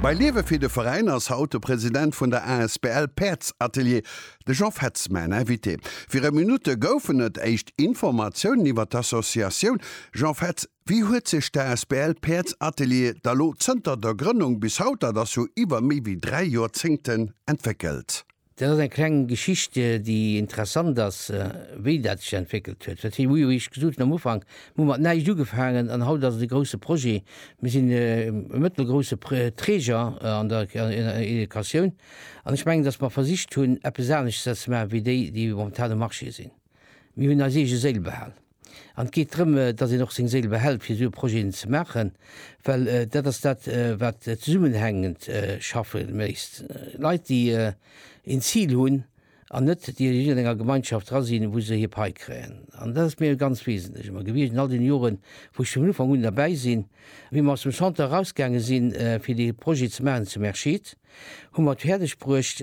Bei Liewe fir de Veräin ass haut de President vun der asbl Päerdsatelier, de Jean Fetz, mäin Invité. Viru Minutte goufen et éischt Informatiounen iwwer d'Associatioun. Jean Fetz, wéi huet sech d'asbl Päerdsatelier da lo zënter der Grënnung bis haut, dat ass jo iwwer méi wéi dräi Joerzéngten, entwéckelt? Dat ass eng kleng Geschicht, déi interessant ass, wéi dat sech entwéckelt huet. Wat wéi ech gesot hunn am Ufank, mir hu mat näischt ugefaangen an haut ass et e grousse Projet. Mir sinn e mëttelgrousse Träger an der Educatioun an ech mengen, datt mer versicht hunn, eppes aneschters ze maachen, wéi déi, déi momentan um Marché sinn. Mir hunn eis eege Séil behal. An et geet drëm, datt een och seng Séil behält, fir esou Projeten ze maachen, well dat ass dat, wat zesummenhängend schaffe léisst. Leit, déi een Zil hunn an net déi a jiddwerenger Gemeinschaft dra sinn, wou se hir Pai kréien. An dat ass mir ganz wesentlech ëmmer gewiescht an all deene Joren, wou ech vun Ufank un derbäi sinn. Wéi mer aus dem Chanter erausgaange sinn, fir dee Projet ze maachen zum Erscheed, hu mer et fäerdegbruecht,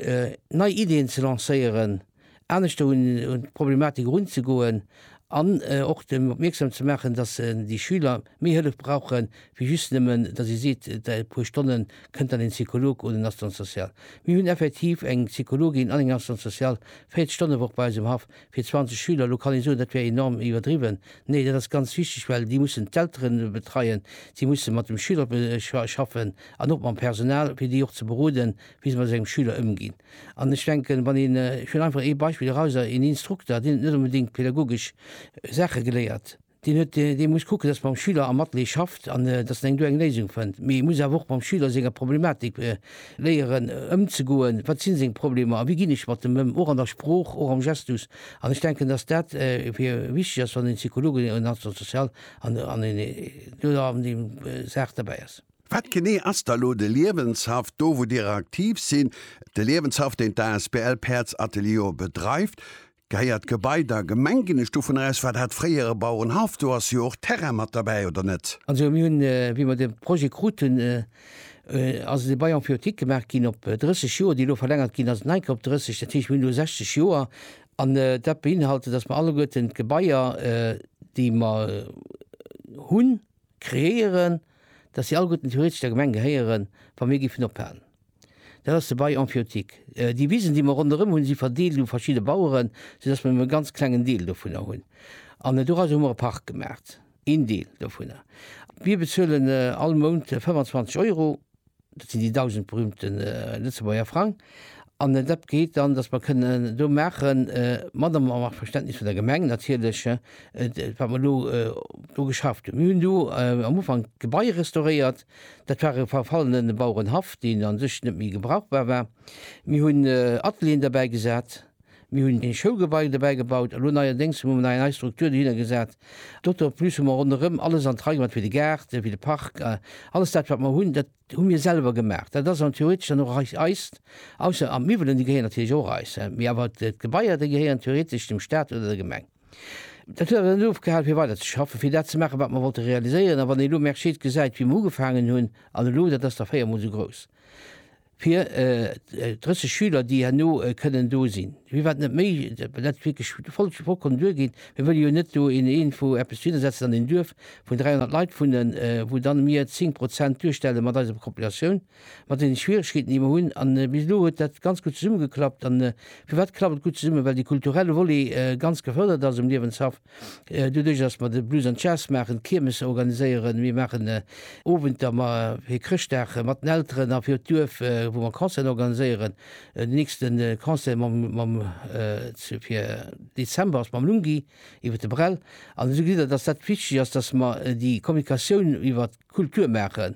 nei Ideeën ze lancéieren, aneschter un d'Problematik erunzegoen an och dem opmierksam ze maachen, dass déi Schüler méi Hëllef brauche wéi just nëmmen, dass ee seet, däi puer Stonne kënnt dann een Psycholog oder en Assistant social. Mir hunn effektiv eng Psychologin an eng Assistante sociale 40 Stonn e Woch bei eis um Haff fir 20 Schüler. Elo kann ee soen, dat wär enorm iwwerdriwwen. Nee, dat ass ganz wichteg, well déi mussen d'Eltere betreien, si musse mat dem Schüler schaffen an och mam Personal, fir déi och ze beroden, wéi se mat esou engem Schüler ëmginn. An ech denken, wann een, ech huelen einfach ee Beispill eraus, een Instrukter, deen huet net onbedéngt pädagogesch Saache geléiert, deen huet, dee muss kucken, dass mam Schüler am Atelier schafft an dass en eng do eng Léisung fënnt, mee e muss awer och mam Schüler senger Problematik léieren ëmzegoen, wat si seng Problemer a wéi ginn ech mat dem ëm, och an der Sprooch, och am Gestus. An ech denken, dass dat fir wichteg ass, wann een Psychologe, en Assistant social an en do an deem Saach derbäi ass. Wat genee ass da lo de Liewenshaff do wou Dir aktiv sinn? De Liewenshaff deen d'asbl Päerds Atelier bedreift, gehéiert d'Gebai der Gemeng ginn ech dovun aus? War dat fréier e Bauerenhaff? Do ass jo och Terrain mat derbäi oder net? Also mir hunn wéi mer de Projet kruten ass e Bail emphyiotique gemaach ginn op 30 Joer, déi elo verlängert ginn ass, en Anker op 30, dat heescht mir hunn elo 60 Joer an dat beinhalte datt mer alleguerten d'Gebaier déi mer hunn, Kreéieren, dass si alleguerten theoretesch der Gemeng gehéieren, wa mir géifen ophalen. Dat ass de Bail emphyiotique. Déi Wisen, déi mer ronderëm hunn, si verdeelt u verschidde Baueren, soudass mer nëmme e ganz klengen Deel dovunner hunn. An doraus hu mer e Park gemaacht, een Deel dovunner. Mir bezuelen all Mount 25 Euro. Dat sinn déi dausend berühmte Lëtzebuerger Frang. An dat geet dann, dass mer kënnen do maachen, mat am Verständnis vun der Gemeng natierlech, wat mer elo do geschafft hunn. Mir hunn do am Ufank d'Gebai restauréiert. Dat war e verfallene Bauerenhaff, deen u sech net méi gebrauchbar war. Mir hunn Atelieren derbäi gesat, Mir hunn e Schoulgebai dobäi gebaut, elo neierdéngs hu mer nach eng nei Struktur dohinner gesat. Doto plus hu mer ronderëm alles an d'Rei gemaach, fir de Gaart, fir de Park. Alles dat, wat mer hunn, dat hu mir selwer gemaach. Dat ass an theoretesch dann och eis, eist, ausser an d'Miwwelen, déi gehéieren natierlech och eis, mee awer d'Gebaier, déi gehéieren theoretesch dem Staat oder der Gemeng. Dat huet awer net ofgehal, fir weider ze schaffen, fir dat ze maachen, wat mer wollte realiséieren. A wann een elo Mercier gesäit, wéi mer ugefaangen hunn, an elo, dat ass da véiermol esou grouss. fir 30 Schüler, déi herno kënnen do sinn, wéi wat net méi, dat wierklech voll vollkommen duergeet. Mir wëlle jo net do een een vu eppes hinnersetzen an een Duerf vun 300 Leit wunnen, wou dann mir 10 Prozent duerstelle mat eiser Populatioun, mat deene Schwieregkeeten, déi mer hunn. An bis elo huet dat ganz gutt zesummegeklappt. A firwat klappt et gutt zesummen? Well dee kulturelle Volet ganz gefërdert ass um Liewenshaff. Doduerch, datt mer de Blues and Jazz maachen, d'Kiermes organiséieren, mir maachen Owenter ma fir Chrëschtdag mat den Elteren a fir d'Duerf, wou mer Concerten organiséieren. Den nächste Concert mam, mam zu fir Dezember ass mam Lungi iwwer de Brel. An esou gesäit Der, datt dat wichteg ass, datt mer déi Kommunikatioun iwwert Kultur maachen.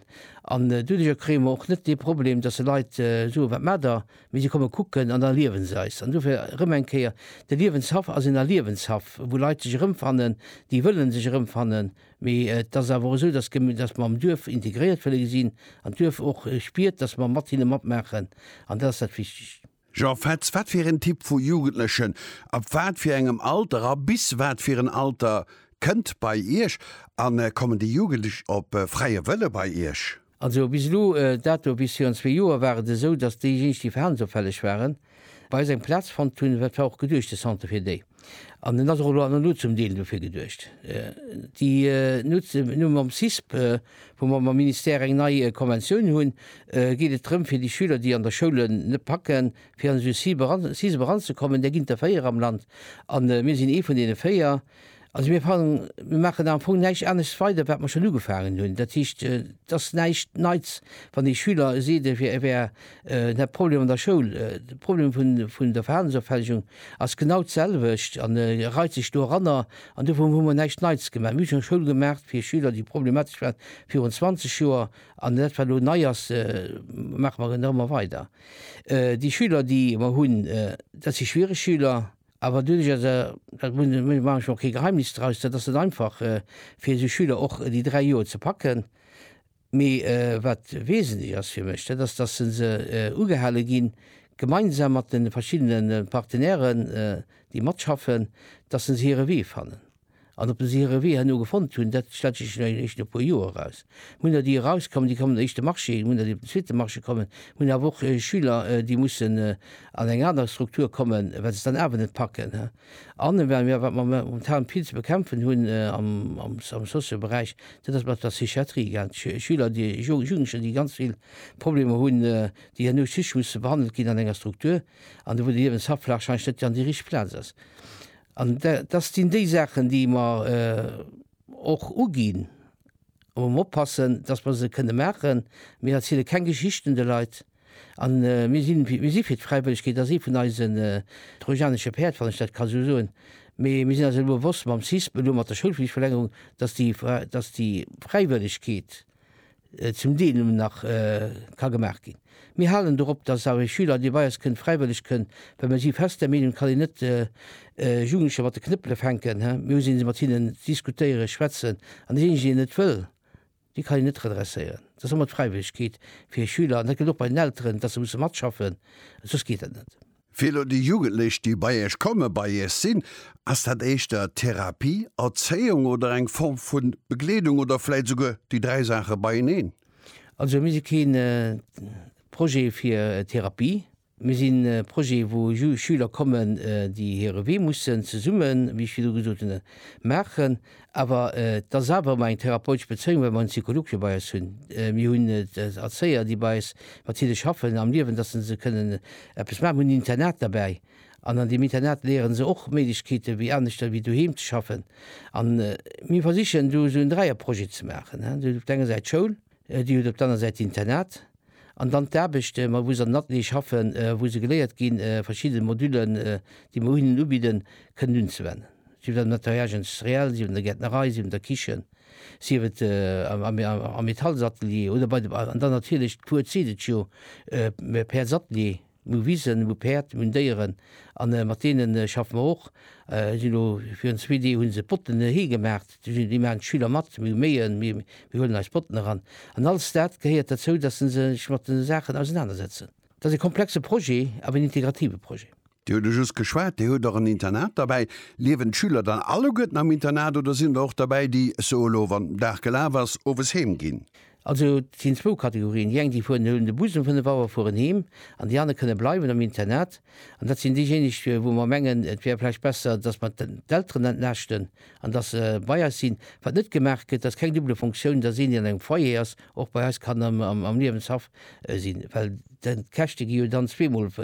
An doduerjer kréie mer och net dee Problem, dass se Leit soen, Wat maacht der? Mee si komme kucken an da liewe se eis. An dofir erëm eng Kéier, De Liewenshaff ass een Erliewenshaff, wou Leit sech erëmfannen, déi wëlle sech erëmfannen. Mee et ass awer esou, dass mer am Duerf integréiert wëlle gesinn an d'Duerf och spiert, dass mer mat hinne matmaachen. An dat ass dat Wichtegst. Jean Fetz, Wat fir en Typ vu Jugendlechen, ab wat fir engem Alter a bis wat fir en Alter kënnt bei Iech an kommen déi Jugendlech op fräie Wëlle bei Iech? Also bis elo, dat do bis virun zwee Joer war et esou, datt déijéineg déi verhalensopfälleg waren, bei eis eng Plaz fonnt hunn. Dat war och geduecht, de Centre fir déi. An en ass och elo an elo zum Deel dofir geduecht. Déi nutze mir elo mam CISP, wou mer mam Ministère eng nei Konventioun hunn, geet et drëm fir déi Schüler, déi an der Schoul en net packen, fir an esou CISP eran, CISP eranzekommen. Där ginn et der véier am Land an mir sinn ee vun deene véier. Also mir fannen, mir maachen am Fong näischt anescht weider, wat mer schonn ugefaangen hunn. Dat heescht, et ass näischt Neits, wann ee Schüler seet, e wär, e wär De Problem an der Schoul, de Problem vun der Verhalensopfällegung ass genau d'selwecht an e reit sech do eranner. An dovun hu mer näischt Neits gemaach. Mir hu schonn Schoul gemaach fir Schüler, déi problematesch waren, virun 20 Joer. An dat, wat elo nei ass, maache mer genau ëmmer weider. Déi Schüler, déi mer hunn, dat si schwiereg Schüler. Awer duerch ass, dat muss een, do maache ech mer och kee Geheimnis draus, dat ass net einfach fir esou Schüler och déi dräi Joer ze packen. Mee wat wesentlech ass fir mech, dat ass, dass se se ugehale ginn, gemeinsam mat de verschiddene Partenairen, déi matschaffen, dass se hire Wee fannen. An ob se hire Wee herno gefonnt hunn, dat stellt sech jo eréischt no e puer Joer eraus. Mir hunn der, déi erauskommen, déi kommen op den éischte Marché, mir hunn der, déi op den zweete Marché kommen, mir hunn awer och Schüler, déi mussen an eng aner Struktur kommen, well se et dann awer net packen. An wat mir momentan vill ze bekämpfen hunn am Socio-Beräich, dat ass mat der Psychiatrie egal. Schüler, Jugendlecher, déi ganz vill Problemer hunn, déi herno just musse behandelt ginn an enger Struktur, an do wou de Liewensablaaf wahrscheinlech net dann déi richteg Plaz ass. An dat sinn déi Saachen, déi mer och uginn, a wou mer oppassen, datt mer se kënne maachen. Mir erziele keng Geschichten de Leit. An mir sinn, mir si fir d'Fräiwëllegkeet a si vun eise trojanesche Päerd, wann ech dat ka esou soen. Mee mir sinn eis elo bewosst mam CISP, elo mat der Schoulflichtverlängerung, dass déi, dass déi Fräiwëllegkeet zum Deel nëmmen nach ka gemaach ginn. Mir halen dorop, dass awer ee Schüler, dee bei eis kënnt, fräiwëlleg kënn, well mir si fest der Meenung, et kann een net Jugendlecher mat de Knëppele fänken. Mir hu se, mir si mat hinnen, diskutéieren, schwätzen an deen eenzegen, deen net wëll, Déi kann een net redresséieren. Et ass ëmmer d'Fräiwëllegkeet fir e Schüler, an dat gëllt och bei den Elteren, dass se musse matschaffen, soss geet dat net. Fir elo déi Jugendlech, déi bei Iech kommen, bei Iech sinn, ass dat éischter Therapie, Erzéiung oder eng Form vu Begleedung oder vläit souguer déi dräi Saache beieneen? Also mir si kee Projet fir Therapie. Mir sinn e Projet, wou Schüler kommen, déi hire Wee mussen zesummen, wéi ech virdu gesot hunn, maachen. Awer et ass awer ëmmer eng therapeutesch Bezéiung, well mer en Psycholog jo bei eis hunn. Mir hunn Erzéier, déi bei eis mat hinne schaffen am Liewen, dass se se kënnen eppes maachen. Mir hunn en Internat derbäi an an deem Internat léiere se och Méiglechkeete wéi aneschter wéi doheem ze schaffen. A mir versichen do esou en Dräierprojet ze maachen, op der enger Säit d'Schoul, Dir hutt op der aner Säit d'Internat an dann d'Aarbecht, mat wou se an den Ateliere schaffen, wou se geléiert ginn, verschidde Modullen, déi mer hinnen ubidden, kënnen unzewennen. Sief et am Nettoyage industriel, sief et an der Gäertnerei, sief et an der Kichen, sief et am Metallsatelier oder bei de, an dann natierlech d'Cour zitt et jo, d'Pairsatelier. Mir hu Wisen, mir hu Päerd, mir hunn Déieren a mat deene schaffe mer och. Déi sinn elo, virun zwee Deeg hu se Botten hei gemaach, déi maachen d'Schüler mat. Mir hu Méien, mir huelen eis Botten eran. An alles dat gehéiert derzou, datt se sech mat de Saachen ausenanersetzen. Dat ass e komplexe Projet, awer en integrative Projet. Dir hutt e just geschwat, Dir hutt och en Internat derbäi. Liewen d'Schüler dann alleguerten am Internat oder sinn der och derbäi, déi, ech soe lo, wann den Dag gelaf ass, owes heem ginn? Also et sinn zwou Kategorien, déi eng déi fueren, déi huelen de Bus um 5 Auer a fueren heem, an déi aner kënne bleiwen am Internat. An dat sinn déijéineg, wou mer mengen, et wär vläicht besser, dass mer d'Elteren entlaaschten an dass se bei eis sinn. Wat net gemaach gëtt, ass keng double Fonctioun, dass een, deen an engem Foyer ass, och bei eis kann am Liewenshaff sinn, well d'Käschte gi jo dann zweemol.